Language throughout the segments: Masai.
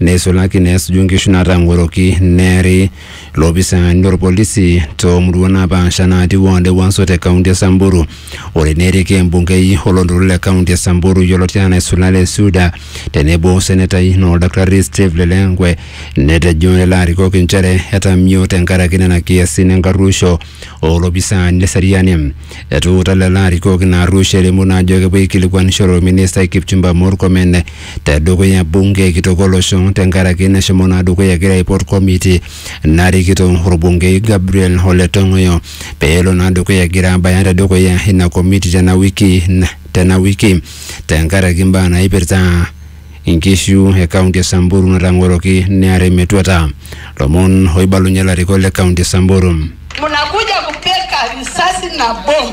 neisulaki neesuju nkishu naatang'oroki neeri loopisaani lolpolisi too murua naapasha naati ward e Wanso te kaunti e Samburu. Ore neeriki embungei oloontoluo le kaunti e Samburu yioloti anaa Isula le Suda tenebo o senetai naa Oldakitari Steve Lelenkwe netejo lelo arikok inchere etamio tenkaraki nena kiasin enkarruosho oo lopisaani le seriani. Etuuta lelo arikok ina arruosho elimu naa ajo kepuo aikilikuanishore olministai Kipchumba Murkomen te dukuya bunge kitok olosho tenkaraki nashomo naa dukuya egira aipot komiti narikito orbungei Gabriel Ole Tong'oyo pee elo naa dukuya egira abaya te dukuya ina komiti tena wiki tena wiki tenkaraki imbaa naipirta inkishu e kaunti e Samburu natang'oroki near emetuata. Lomon oibalunye ilarikok le kaunti e Samburu. Mnakuja kupeka risasi na bomu.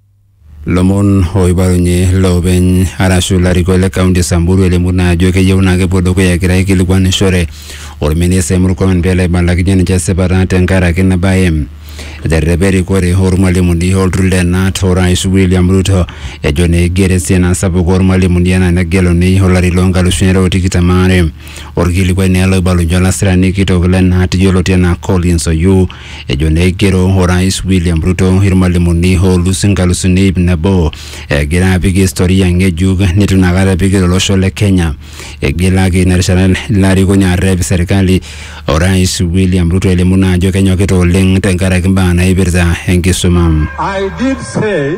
Lomon oibalunye loopeny arashu larikok le kaunti e Samburu elimu naa ajo keyieu naa kepuo dukuya egira aikilikuanishore olministai Murkomen pelo aibalakinye ninche esipata tenkaraki ina bae. Eterrepa erikore oormwalimuni olturrur le KNUT orais William Ruto ejo naa eiger esiana sapuk oormwalimuni enaa negeluni olari loo nkalusuni are o tikitam aare. Olkilikuai naa ele oibalunye olasirani kitok le KNUT yioloti enaa Collins Oyuu ejo neigero orais William Ruto irmalimuni oolus inkalusuni ip nabo egira apik historia ng'ejuk neitu inakata epik tolosho le Kenya. Eigilaki ina rishata ilo arikoni arrep serkali orais William Ruto elimu naa ajo kenyokita oleng tenkaraki imbaa naipirta enkisuma. I did say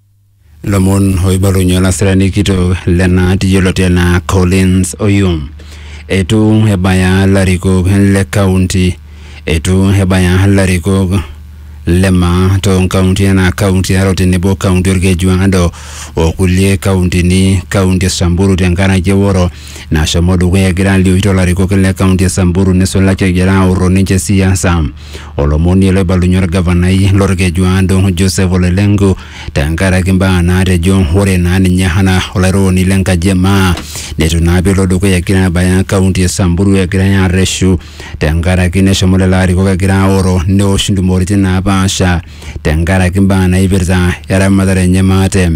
lomon oibalunye olasirani kitok lena yioloti anaa Collins Oyum. Eitu ebaya larikok le kaunti eitu ebaya larikok le maa too nkauntini anaa kaunti e Narok tenebo kaunti Olkeju Ado o kulie kauntini kaunti e Samburu tenkaraki eworo nashomo dukuya egira alioyu too larikok le kaunti e Samburu neisulaki egira aoro ninche siasa. olomoni loibalunye orgavanai lorkeju aado Joseph Ole Lenku tenkaraki imbaa naatejo ore naa ninye anaa olairoroni lenkaji e maa neitu naa pelo dukuya egira abaya kaunti e Samburu egirai arreshu tenkaraki neshomo lelo arikok egira aoro neosh intumoritin naapaasha tenkaraki imbaa naipirta eramatare enye maate.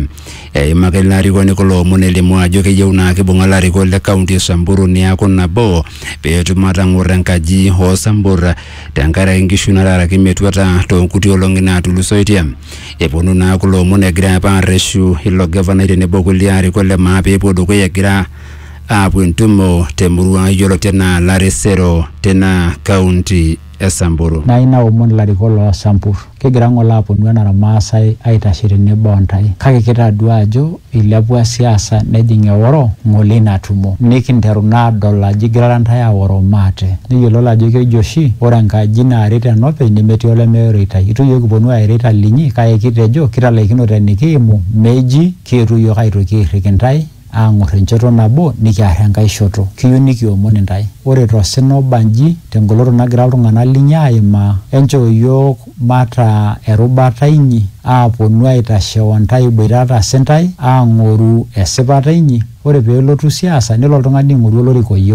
Eimaka ilo arikoni kulo omon elimu ajo keyieu naa kibung'a ilarikok le kaunti e Samburu neaku nabo pee etum atang'or enkaji oo Sambur tenkaraki nkishu nataaraki metuata too nkuti olong'i naatulusoitie. Eponu naa kulo omon egira apa arreshu ilo gavanai tenebo kulie arikok le maa pee epuo dukuya egira aapuo entumo te murua yioloti anaa Laresero tina kaunti. e Samburu. Nayieu naomon ilarikok loo Sampur, kigira ng'ole aaponu enaa Ilmaasai aitashe tenebo o ntae kake kitadua ajo eilepua siasa nejing eoro ng'ole ina tumo. Nikinteru naa aadol ajo igirara ntae aoro maate. Nikiyiololo ajo keji oshi ore enkaji naaret enopeny nemetii oleme oirritai. Eitu iyiook kiponu airo eitaling'i kake kitejo kitalaikinote enikiimu meji kietuo iyiook aitoki airrik intae. aang'or enchoto nabo nikiar enkae shoto. Kiyieu nikiomon intae. Ore to sina oba nji, te ngoloto nagira iltung'ana linyi aaimaa, enchoo iyiook mataa erubata inyi, aaponu aitashe o ntae iboitata sintae, aang'oru esipata inyi, ore pee elotu siasa, nelo oltung'ani aing'oru olorika oyieu.